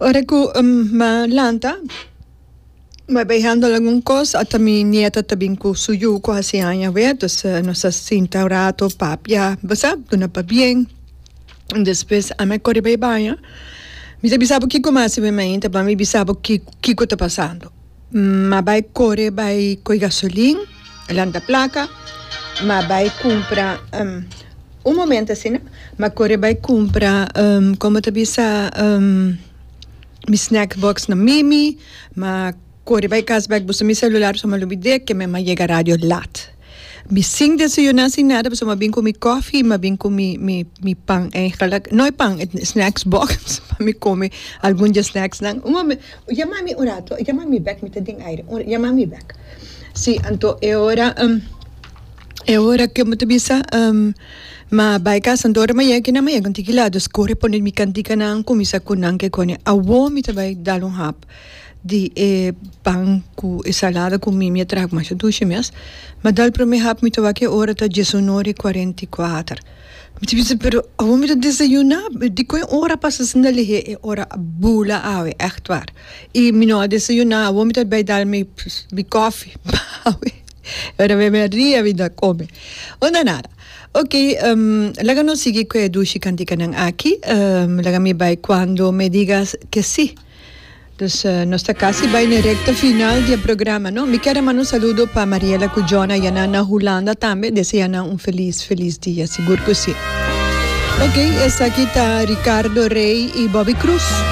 Ora cu mi lanta mi bay handle algun cos ata mi nieta ta bin cu su yu cu haci aña awe dus nos a sinta un rato papia basap duna pabien despues ami a cori bay baña mi ta bisa bo kico mi a hasi mi mami ta ban mi bisa bo kico ta pasando. N a bai kore bai koy gasolin, lanta plaka, m a bai kumpra, un momento asina, m a kore bai kumpra, como ta bisa, mi snack box na mimi, m a kore bai kas bek busa mi celular, pasobra mi a lubid'é, keme mi a yega radio lat. Mi sin desayuná sin nada pasobra m'a bin ku mi kòfi i m'a bin ku mi mi mi pan eigenlijk no e pan e snacks box pa mi kome algun di e snacksnan un momen yama mi un rato yama mi bèk mi ta den aire un yama mi bèk si anto e ora e ora ke mi ta bisa m'a bai kas anto ora m'a yega kinan m'a yega un tiki lado pues kore pone mi kantikanan kuminsá ku nan ke kòne awor mi ta bai dal un hap. di e pan ku e salada ku mi mi a traha ku masha dushi mes mi a dal prome hap mi ta wak e ora ta diesunor i kuarenta i kuater mi ta bisa pero awor mi ta desayuna dikon e ora pasa asina na lihe e ora a bula awe echt war i mi no a desayuna awor mi ta bai dal mi kofi awe ora awe mi a ria mi ta kome unda nada ok laga nos sigui ku e dushi kantika nan aki laga mi bai kuando me diga ke si. Dus nos ta casi bay na recta final di e programa, no? Mi kier a manda un saludo pa Mariela cu Jona yanan na Hulanda tambe. Desea yanan un feliz, feliz dia. Sigur cu si. Ok, esaki ta Ricardo Rey y Bobby Cruz.